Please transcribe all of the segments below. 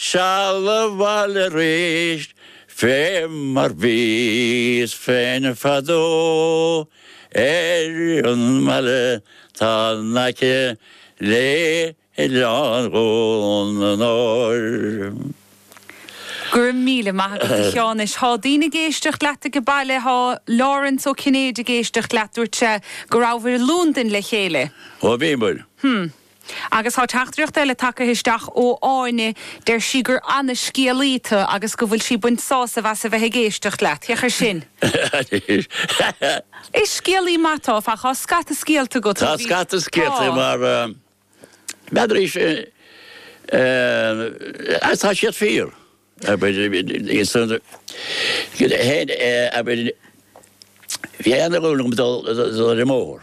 Seal abhaile arís fé mar bhíos féin fadó ar an mbaile 'tá in aice le Oileán Dhún an Óir. Go raibh míle maith agat, a Sheáin. Anois, tá daoine ag éisteacht leat ag an baile, tá Laurence Ó Cinnéide ag éisteacht leat. Dúirt sé go rabhabhair i Lúndain le chéile. Ó bhíomair. Hm. Agus tá teachtaireacht eile tagtha isteach ó Áine, deir sí gur ana scéalaí tu agus go bhfuil sí ag baint sásaimh as a bheith ag éisteacht leat. Féach ar sin! Is scéalaí maith tu, tá scata scéalta agat. Tá scata scéalta agam mar n'fheadar é sin agus tá siad fíor. Bhí aon uair agam dul i mbóthar.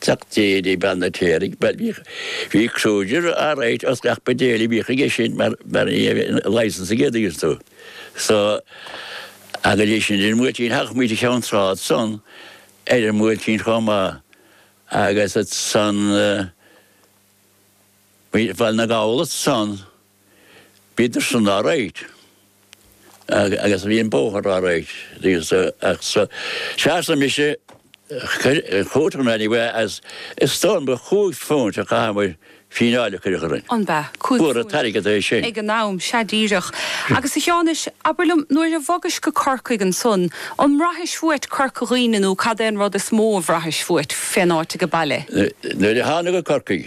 Teacht Dhéirí Ban na Téar ag Baile Mhíchíl. Bhí cruisir alright os gach ba Dhéirí Mhíchíl aige sin mar mar ní raibh an licence aige d'aois dó. So agus é sin ar an mBuailtín thagadh muid go Ceann Trá ansan ar an mBuailtín chomh maith agus ansan bhí Baile na nGall ansan. Bhíodar san alright agus bhí an bóthar alright agus ach so sheasadh muid sa chúirt anyway as is dóigh liom cúig phúint a chaitheadh muid fíneáil a cuireadh orainn. An b'ea? Cúig phúint. Ba mhór an t-airgead é sin. Ag an am, sea díreach. Agus a Sheáin anois, abair liom, nuair a bhogais go Corcaigh ansan, an mbraithis uait Corca Dhuibhne nó cad é an rud is mó a bhraithis uait fén áit age baile? Nuair a thánag go Corcaigh,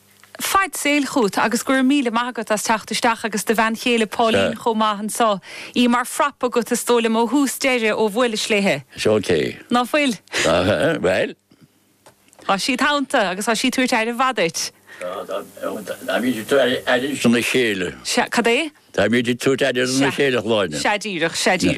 Faid saoil chugat agus go raibh míle maith agat as teacht isteach agus do bhean chéile Pauline chomh maith anso, í mar phrop agat is dóigh liom ó thús deireadh ó bhuailis léithe. Is ok. Ná fuil? Bhuel. Thá sí id theannta agus thá sí tabhairt aire mhaith duit. Táimíd ag tabhairt aire do na chéile. Sea, cad é? Táimíd ag tabhairt aire do na chéile, a Shláine. Sea díreach, sea díreach.